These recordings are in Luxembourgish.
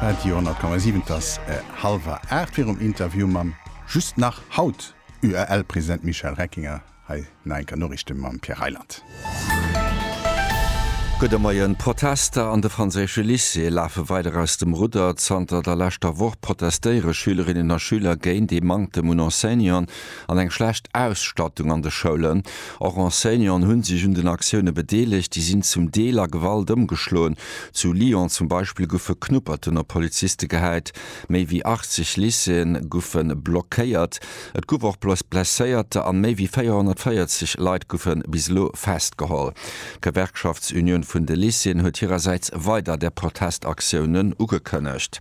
Radio 10,7 Et ass hallwer aacht. Virum Interview mam just nach haut UEL-President Michel Reckinger hei nach eng Kéier Noriichte mam Pierre Reyland. Gudde Moien. D'Protester an de franséische Lycéeë lafe weider aus dem Rudder. Zanter der leschter Woch protestéiere Schülerinnen a Schüler géint ee Manktem un Enseignanten. an eng schlecht Ausstattung an de Schoulen. Och Enseignanten hu sech un den Aktioune bedeelegt. Déi sinn zum Deel a Gewalt ëmgeschloen. Zu Lyon zum Beispill goufe Knupperten op Poliziste gehäit. Méi wéi 80 Lycéeën goufe blockéiert. Et gouf och Blesséierter an méi wéi 440 Leit goufe bis elo festgeholl. D'Gewerkschaftsunioun vun de Lycéeën huet hirersäits weider der Protestaktiounen ugekënnegt.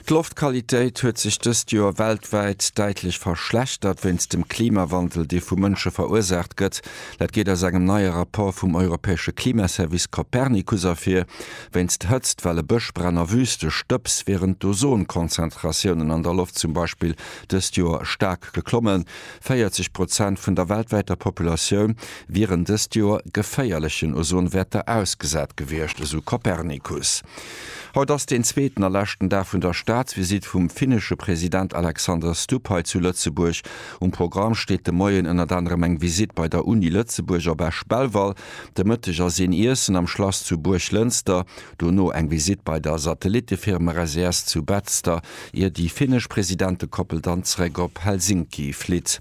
D'Loftqualitéit huet sech dëst Joer weltwäit däitlech verschlechtert wéinst dem Klimawandel, dee vu Mënsche verursaacht gëtt. Dat geet aus engem neie Rapport vum europäesche Klimaservice Copernicus ervir. Wéinst Hëtztwelle, Bëschbränn a Wüste Stëbs wieren d'Ozonkonzentratiounen an der Loft zum Beispill dëst Joer staark geklommen. 40 Prozent vun der weltwäiter Populatioun wieren dëst Joer geféierlechen Ozonwäerter ausgesat gewiescht, esou Copernicus. Haut ass deen zweeten a leschten Dag vun der Staatsvisitt vum finnesche President Alexander Stubb hei zu Lëtzebuerg. Um Programm steet de Moien ënnert anerem eng Visitt bei der Uni Lëtzebuerg op Esch-Belval, de Mëtteg ass een Iessen am Schlass zu Buerglënster, dono eng Visitt bei der Satellittefirma Resurs zu Betzder, ier déi finnesch Presidentekoppel dann zeréck op Helsinki flitt.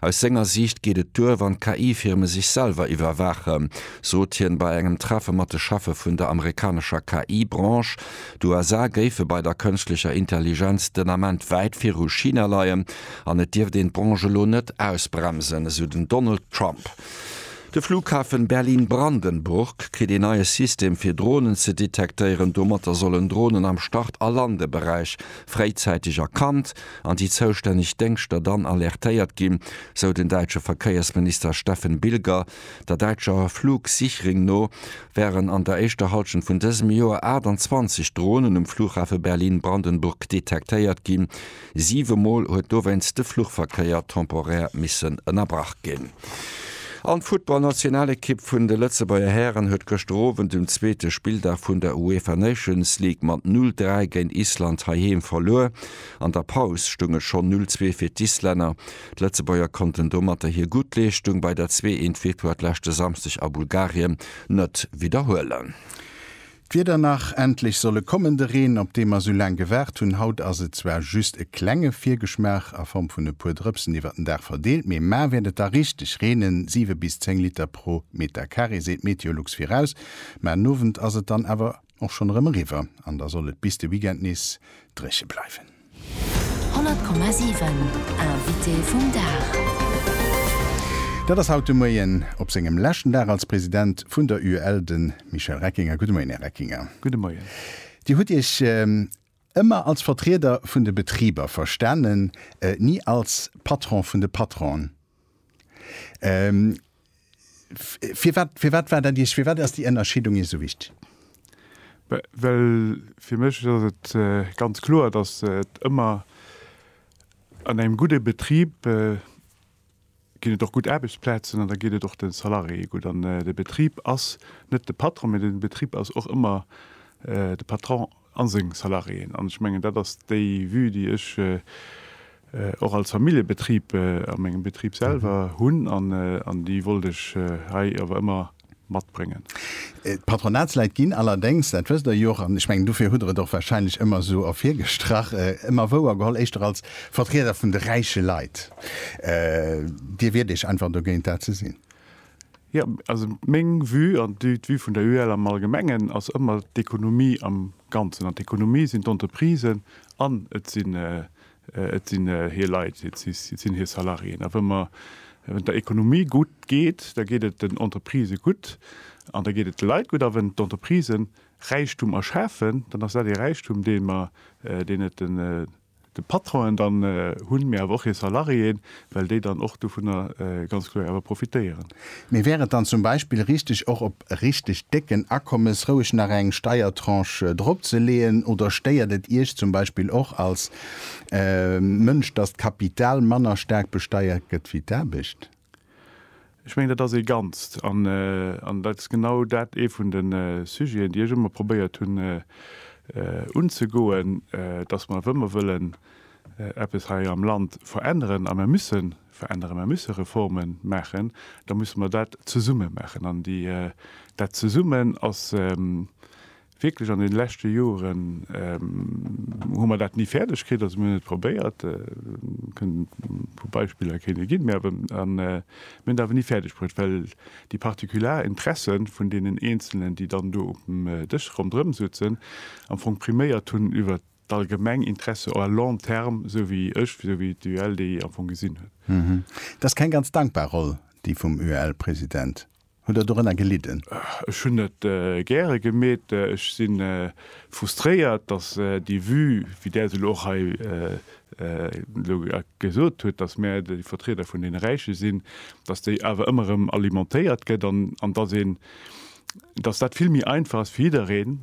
Aus senger Siicht geet et duer, wann d'KI-Firme sech selwer iwwerwaachen, sot hien bei engem Treffe mat de Cheffe vun der amerikanescher KI-Branche. D'USA géife bei der kënschtlecher Intelligenz den Ament wäit viru China leien an et dierft een d'Branche elo net ausbremsen, esou den Donald Trump. De Flughafen Berlin-Brandenburg kritt een neie System fir Dronen ze detektéieren. Domatter sollen Dronen am Start a Landeberäich fréizäiteg erkannt an déi zoustänneg Déngschter dann alertéiert ginn, sou den däitsche Verkéiersminister Steffen Bilger. Der däitscher Flugsichring no wären an der éischter Hallschent vun dësem Joer 28 Dronen um Flughafe Berlin-Brandenburg detektéiert ginn. Siwe Mol huet dowéinst de Fluchverkéier temporär missen ënnerbrach ginn. An d'Futtballnationalekipp vun de Lëtzebuerger Hären huet gëschter Owend um zweete Spilldag vun der UEFA Nations League mat 0, 3 géint Island heiheem verluer. An der Paus stoung et schonn 0 Zwee fir d'Islänner. D'Lëtzebuerger konnten domatter hir gutt Leeschtung bei der Zwee Eent Victoire d'leschte Samschdeg a Bulgarien net widderhuelen. D'Wieder nach, Endlech soll e kommen, de Reen, op dee mer esou laang gewaart hunn. Haut ass et zwar just e klenge Virgeschmaach a Form vun e puer Drëpsen iwwert den Dag verdeelt, mee mar wäert et da richteg reenen, 7 bis 10 Liter pro Meter Carré seet Meteolux viraus. Mä en Owend ass et dann awer och schonn erëm eriwwer an da soll et bis de Weekend nees dréche bleiwen. 100,7 Invité vum Dag. Dat ass haut de Moien op sengem leschten Dag als President vun der UEL de Michel Reckinger. Gudde Moien, Här Reckinger. Gudde Moien. Dir hutt Iech. Ëmmer als Vertrieder vun de Betriber verstanen, ni als Patron vun de Patronen. Firwat, firwat war dat Iech, firwat ass déi Ënnerscheedung Iech esou wichtig? Well fir mech ass et ganz kloer, dass et ëmmer an engem gudde Betrib, ginn et och gutt Aarbechtsplazen an da geet et och de Salariéeë gutt. An de Betrib ass net de Patron, mee de Betrib ass och ëmmer de Patron a seng Salariéeën. An ech mengen, dat ass déi Vue, déi ech och als Familljebetrib a mengem Betrib selwer hunn an déi wollt ech hei awer ëmmer matbréngen. D'Patronatsleit ginn allerdéngs, dat wësst Der jo och, an ech mengen dofir hutt Der et och wahrscheinlech ëmmer esou ervirgestrach, ëmmer wouergeholl éischter als Vertrieder vun de räiche Leit. Dir wiert Iech einfach dogéint, dat ze sinn? Jo, also meng Vue an d'Vue vun der UEL am Allgemengen ass ëmmer d'Ekonomie am Ganzen. An d'Ekonomie sinn d'Entreprisen an et sinn Et sinn hir Leit, et sinn hir Salariéen. A wann der Ekonomie gutt geet, da geet et den Entreprisë gutt an da geet et de Leit gutt. A wann d'Entreprisë Räichtum erschafen, dann ass dat ee Räichtum, deen mer, deen net de Patronen dann hunn, mee awer och hir Salariéen, well déi dann och dovunner ganz kloer awer profitéieren. Mee wär et dann zum Beispill richteg, och op richteg décken Akommes roueg nach eng Steiertranche dropzeleeën? Oder stéiert et Iech zum Beispill och als Mënsch, dass d'Kapital manner staark besteiert gëtt wéi d'Aarbecht? Ech mengen, dat ass ee Ganzt. An dat ass genau dat, ee vun de Sujeten, déi ech ëmmer probéiert hunn unzegoen, dass mer, wa mer wëllen eppes hei am Land veränneren, a mer müsse veränneren, mer müsse Reforme maachen, da musse mer dat zesumme maachen. An dat Zesummen ass. Wierklech an den leschte Joeren hu mer dat ni fäerdeg kritt, also mir hunn et probéiert, kënnen puer Beispiller kënne ginn, mä awer an mir hunn et awer ni fäerdeg bruet, well déi partikular Interesse vun deenen Eenzelnen, déi dann do op dem Dësch ronderëm soutzen, am Fong priméiert hunn iwwer d'allgemeng Interesse à long terme, esou wéi ech, esou wéi d'UEL déi am Fong gesinn huet. Dat ass keng ganz dankbar Roll, déi vum UEL-President. Hutt Der dorënner gelidden? Ech hunn net gäre gemeet. Ech si frustréiert, datt déi Vue, wéi där se elo och hei elo gesot huet, datt mär déi Vertrieder vun deene Räiche sinn, datt déi awer ëmmer erëm alimentéiert gëtt an datt een, datt dat vill méi einfach ass fir jiddereen,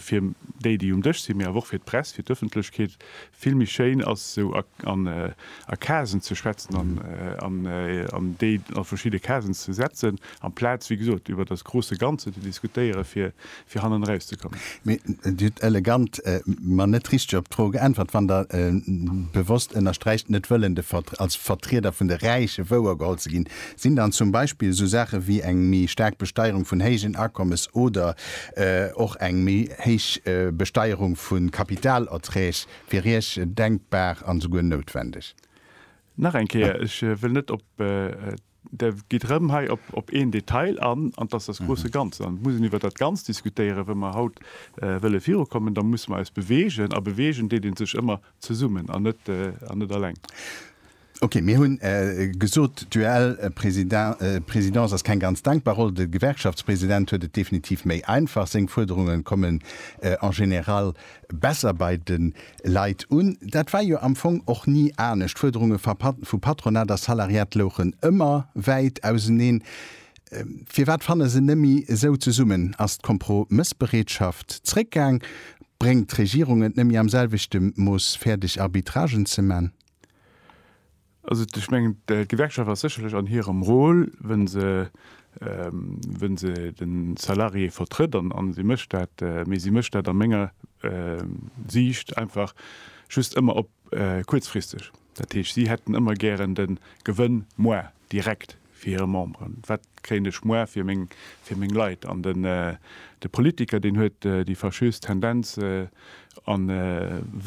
fir déi, déi um Dësch sinn, mee awer och fir d'Press, fir d'Ëffentlechkeet, Vill méi schéin ass esou a Casen ze schwätzen an déi a verschidde Casen ze setzen, amplaz, wéi gesot, iwwer das große Ganze ze diskutéieren, fir hannen erauszekommen. Mee Dir hutt elegant, ma net richteg op d'Fro geäntwert, wann Der bewosst ënnersträicht, net wëllen als Vertrieder vun de Räiche wouergeholl ze ginn. Sinn dann zum Beispill esou Saache wéi eng méi staark Besteierung vun héijen Akommes oder Och eng méi héich Besteierung vu Kapitalerträg wier Iech denkbar an esouguer noutwendeg? Nach eng Kéier, ech wëll net op, Der geet erëm hei op een Detail an, an dass das große Ganze. An et muss een iwwert dat Ganzt diskutéieren. Wa mer haut wëlle virukommen, da muss mer eis bewegen, a bewegen deet ee sech ëmmer zesummen an net alleng. Ok, mir hunn gesot, d'UEL-Presidence ass keng ganz denkbar Roll. De Gewerkschaftspresident huet et definitiv méi einfach. Seng Fuerderungen kommen en général besser bei de Leit un. Dat war jo am Fong och ni anescht. D'Fuerderunge vu Patronat a Salariat louchen ëmmer wäit auseneen. Firwat fanne se nëmmi esou zesummen? Ass d'Kompromëssbereetschaft zréckgaang? Bréngt d'Regierung et nëmmi am selwechte Mooss fäerdeg, Arbitragen ze man? Also ech mengen, d'Gewerkschaft ass sécherlech an hirem Rôle, wou se, wou se de Salarié vertrëtt, an, an si mécht dat, mee si mécht dat a menger Siicht einfach just ëmmer op kuerzfristeg. Dat heescht, si hätten ëmmer gären de Gewënn moarn. direkt fir hire Memberen, wat kréien ech muer fir meng fir meng Leit an den de Politiker deen huet déi fâcheuse Tendenz an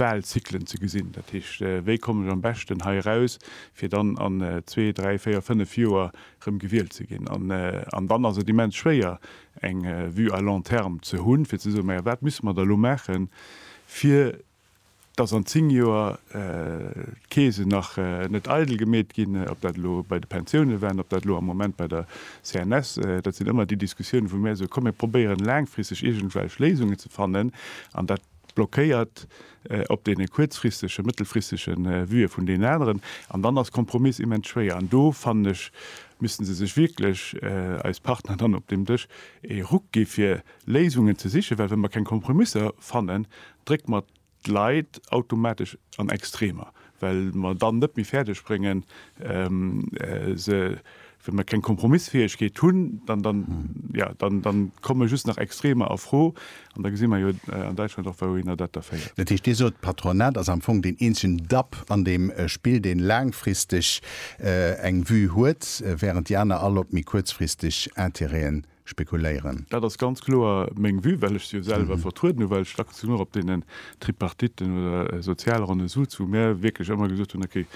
Wahlzyklen ze gesinn, dat heescht wéi kommen ech am beschten hei eraus fir dann an zwee, dräi, véier, fënnef Joer rëm gewielt ze ginn an an dann ass et immens schwéier eng Vue à long terme ze hunn fir ze soen, majo wat misse mer da lo maachen fir Dass an 10 Joer d'Keesen nach net eidel gemeet ginn, ob dat elo bei de Pensiounen war, ob dat elo am Moment bei der CNS, dat sinn ëmmer déi Diskussiounen, wou mir soen, komm mir probéieren laangfristeg iergendwelch Léisungen ze fannen an dat blockéiert op deene kuerzfristege, mëttelfristege Vueë vun deenen aneren. An dann ass Kompromiss immens schwéier an do, fannen ech, misste se sech wierklech, eis Partner dann op deem Dësch, ee Ruck gi fir Léisungen ze sichen, well wa mer keng Kompromisser fannen, Drécke mer d'Leit automatesch an Extremer, well mer dann net méi fäerdeg bréngen, se, well mer keng Kompromissfäegkeet hunn, dann, jo, dann komme just nach Extremer a Fro. An da gesi mer jo an Däitschland och, wouhinner dat da féiert. Dat heescht, Dir sot, d'Patronat ass am Fong deen eenzegen Dapp an deem Spill, deen laangfristeg eng Vue huet, während déi aner all op méi kuerzfristeg Intérêten spekuléieren. Dat ass ganz kloer meng Vue, well ech se jo selwer vertrueden hu, well ech dacks genug op deenen Tripartiten oder Sozialronne sutz, wou mär wierklech ëmmer gesot hunn, okay,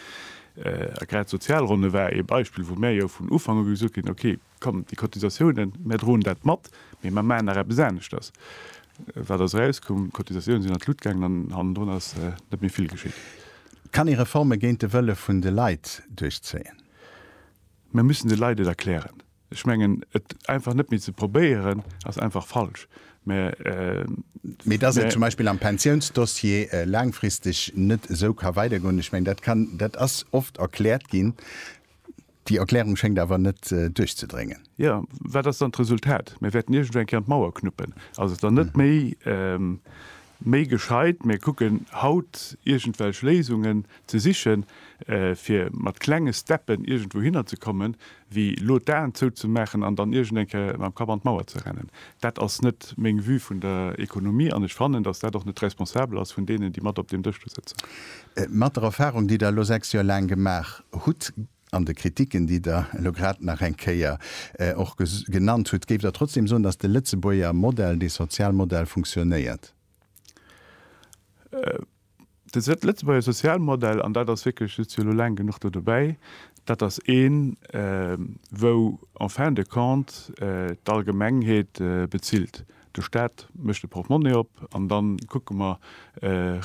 a grad d'Sozialronne war ee Beispill, wou mär jo vun Ufank u gesot ginn, okay, komm, déi Cotisatiounen, mär droen dat mat, mee mär maachen nach eppes aneschters. Wat ass erauskomm? D'Cotisatiounen sinn an d'Lut gaangen an hannendrun ass net méi vill geschitt. Kann ee Reforme géint de Wëlle vun de Leit duerchzéien? Mär müssen de Leit et erklären. Ech mengen, et einfach net méi ze probéieren, ass einfach falsch. Mee dass et zum Beispill am Pensiounsdossier laangfristeg net esou ka weidergoen, ech mengen, dat kann, dat ass oft erkläert ginn. Déi Erklärung schéngt awer net duerchzedréngen. Jo, wat ass dann d'Resultat? Mir wäerten iergendwou eng Kéier an d'Mauer knuppen. Ass et dann net méi méi gescheit, mir kucken haut iergendwelch Léisungen ze sichen, fir mat klenge Steppen iergendwou hinner ze kommen, wéi elo d'Aen zouzemaachen an dann iergend eng Kéier mam Kapp an d'Mauer ze rennen. Dat ass net meng Vue vun der Économie an ech fannen, dass dat och net responsabel ass vun deenen, déi mat op deem Dësch do sëtzen. Mat der Erfahrung, déi Der elo sechs Joer laang gemaach hutt, An de Kritiken, déi Der elo grad nach eng Kéier och genannt hutt, géift Der trotzdem soen, dass de Lëtzebuerger Modell, dee Sozialmodell funktionéiert? De Lëtzebuerger Sozialmodell, an dat ass wierklech, sot jo elo laang genuch do dobäi, dat ass een, wou en fin de compte d'Allgemengheet bezilt. De Stat mécht de Portemonnaie op an da kucke mer,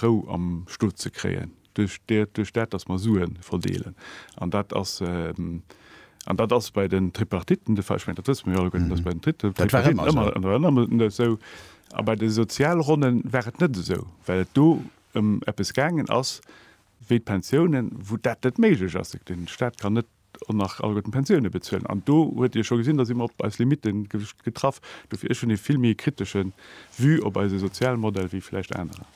Rou am Stot ze kréien. duerch dat datt mer Sue verdeelen, an dat ass an dat ass bei den Tripartitten de Fall, ech mengen dat wësse mer jo alleguerten, datt bei den Tripartitten ëmmer esou, a bei de Sozialronne war et net esou, well et do ëm eppes gaangen ass wéi d'Pensiounen, wou dat net méiglech ass, de Staat kann net an nach alleguerten Pensioune bezuelen. An do huet Dir scho gesinn, da si mer op eis Limite getraff. Dofir, ech hunn ee vill méi kritesche Vue op eise Sozialmodell wéi vläicht anerer.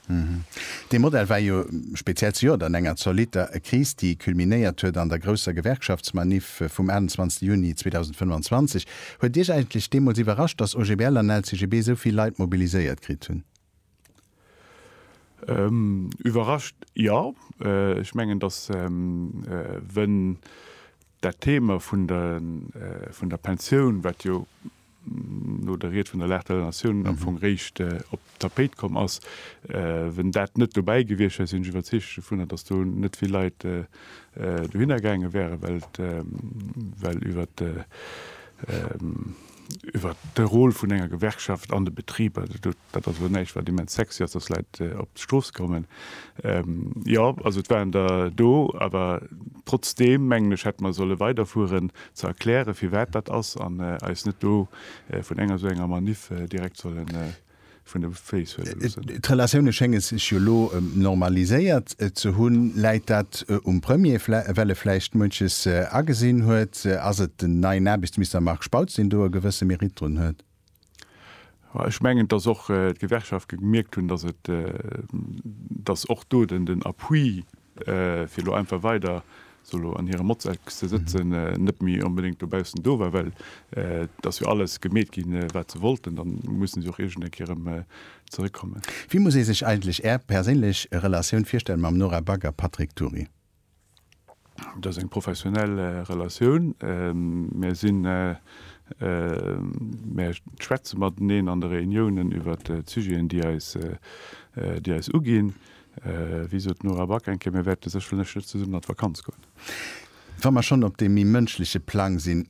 Dee Modell war jo speziell zejoert an enger zolitter Kris, déi culminéiert huet an der grousser Gewerkschaftsmanif vum 28 Juni 2025. Huet Iech eigentlech deemools iwwerrascht, datt OGBL an LCGB esou vill Leit mobiliséiert kritt hunn? Iwwerrascht, jo. Ech mengen, datt wënn dat Thema vun der Pensioun, wat jo no der Ried vun der Lage de la Nation am Fong réischt op d'Tapéit komm ass, wënn dat net dobäi gewiescht wär, sinn ech iwwerzeegt dovunner, datt do net vill Leit dohinner gaange wären, well iwwert iwwer de Rôle vun enger Gewerkschaft an de Betriber, dat ass elo näischt, wat immens sexy ass, dass Leit op d'Strooss kommen. Jo, also et waren der do, awer trotzdeem mengen ech, hätte mer solle weiderfueren, ze erklären, firwat dat ass, an eis net do vun enger esou enger Maniff direkt sollen. vun de Féiss huele loossen. D'Relatioune schénge sech jo elo normaliséiert ze hunn. Läit dat um Premier, well e vläicht munches agesinn huet? Ass et den neien Aarbechtsminister Marc Spautz, deen do e gewësse Mérite drun huet? Ech mengen, datt och d'Gewerkschafte gemierkt hunn, datt och do den Appui fir elo einfach weider esou elo an hirem Motzeck ze sëtzen, net méi onbedéngt dobaussen do war, well et ass jo alles gemeet ginn, wat se wollten, da musse se och iergend eng Kéier erëm zeréckkommen. Wéi muss ee sech eigentlech Är perséinlech Relatioun virstellen mam Nora Back a Patrick Tury? Dat ass eng professionell Relatioun. Mär sinn, mär schwätze mateneen an de Reuniounen iwwert d'Sujeten, déi eis, déi eis uginn. Wéi sot d'Nora Back eng Kéier, Mir wäerte sécherlech net zesummen an d'Vakanz goen. Wa mer schonn op deem méi mënschleche Plang sinn,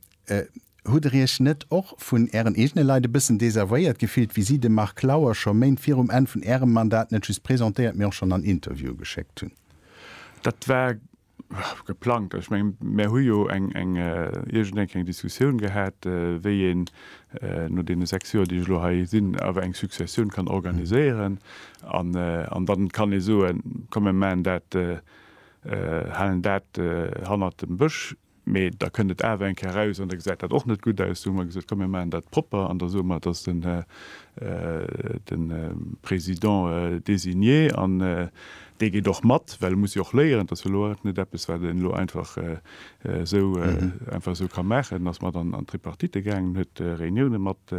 Hutt Der Iech net och vun Ären eegene Leit e bëssen desavouéiert gefillt, wéi si de Marc Lauer scho Méint virum Enn vun Ärem Mandat net just presentéiert, mee och schonn an Interviewe geschéckt hunn? Dat war Geplangt, ech mengen, mär hu jo eng iergendeng eng Diskussioun gehat, wéi een no deene sechs Joer, déi ech elo hei sinn, awer eng Successioun kann organiséieren. An da kann ee soen, komm mir maachen dat, halen dat hannert dem Bësch. Mee da kënnt et awer eng Kéier eraus an da gesäit dat och net gutt aus. Du hu mer gesot, komm mir maachen dat propper an da soe mer, et ass de Président désigné an Dee geet och mat, well e muss jo och léieren. Et ass jo elo och net eppes, wat een elo einfach esou einfach esou ka maachen. En ass mat an d'Tripartite gaangen, huet Reuniounen mat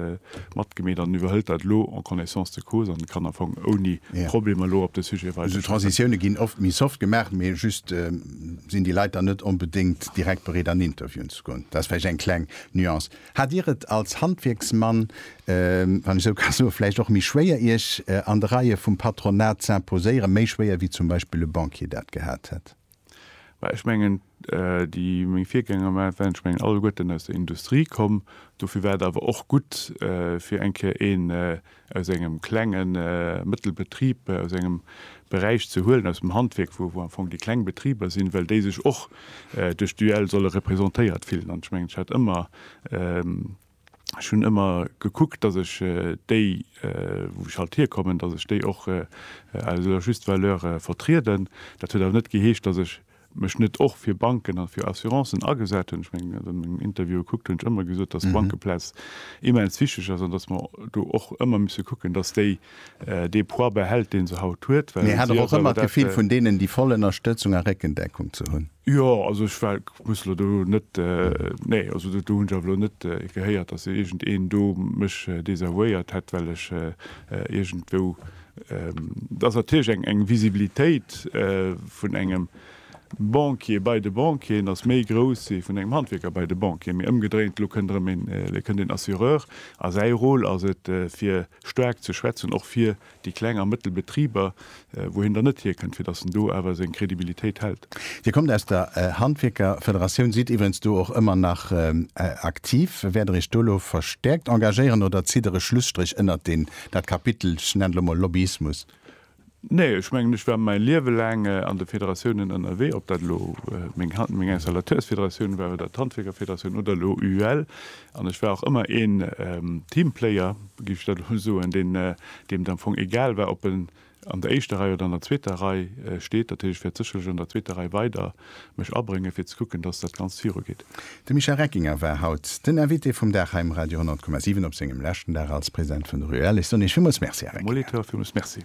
matgemeet an iwwerhëlt dat elo en connaissance de cause an kann am Fong ouni Problemer elo op de Sujet weider. Esou Transitioune ginn oft méi soft gemaach, mee just sinn déi Leit dann net onbedéngt direkt bereet an Interviewen ze goen. Dat ass vläicht eng kleng Nuance. Hat Dir et als Handwierksmann, wann ech esou ka soen, vläicht och méi schwéier, Iech an de Reie vum Patronat z'imposéieren, méi schwéier wéi zum Beispill e Banquier dat gehat hätt? Mä ech mengen, déi meng Virgänger waren, ech mengen alleguerten aus der Industrie komm, dofir war et awer och gutt, fir eng Kéier ee aus engem klenge mëttel Betrib, aus engem Beräich ze huelen, aus dem Handwierk, wou am Fong déi kleng Betriber sinn, well déi sech och duerch d'UEL solle representéiert fillen. An ech mengen, ech hat ëmmer, ech hunn ëmmer gekuckt, datt ech déi, wou ech halt hierkommen, datt ech déi och à leur juste valeur vertrieden. Dat huet awer net geheescht, datt ech mech net och fir Banken a fir Assurancen agesat hunn, ech mengen, wann ech meng Interviewe kuckt, hunn ech ëmmer gesot, datt d'Bankeplaz immens wichteg ass an datt mer do och ëmmer musse kucken, datt déi dee Poids behält, dee se haut huet. Mee hat Der och ëmmer d'Gefill, vun deenen déi voll Ënnerstëtzung a Réckendeckung ze hunn? Jo, also ech war, muss elo do net, nee, also do hunn ech awer elo net gehéiert, datt iergend een do mech désavouéiert hätt, well ech iergendwou Et ass natierlech eng Visibilitéit vun engem Banquier bei de Banquieren ass méi grouss wéi vun engem Handwierker bei de Banquieren. Mee ëmgedréint, elo kënnt erëm een, elo kënnt een Assureur a säi Rôle ass et, fir staark ze schwätzen, och fir déi kleng a mëttel Betriber, wou hien dann net hierkënnt, fir datt en do awer seng Crédibilitéit hält. Dir kommt aus der Handwierkerfederatioun, sidd iwwerens do och ëmmer nach aktiv. Wäert Der Iech do elo verstäerkt engagéieren oder zitt Der e Schlusstréch ënnert deen Dat Kapitel, ech nennen et elo mol Lobbyismus. Nee, ech mengen, ech war mäi Liewe laang an de Federatiounen ënnerwee, ob dat elo meng Installateursfederatioun war oder d'Handwierkerfederatioun oder elo UUL. An ech war och ëmmer een Teamplayer, géif ech dat elo soen, deem et am Fong egal war, ob en An der éischter Rei oder an der zweeter Rei steet, dat heescht, ech wäert sécherlech an der zweeter Rei weider mech abréngen, fir ze kucken, dass dat Ganzt virugeet. De Michel Reckinger war haut den Invité vum Dag hei um Radio 100,7 op sengem leschten Dag als President vun der UEL. Ech soen Iech villmools Merci, Här Reckinger. Molitor, villmools Merci.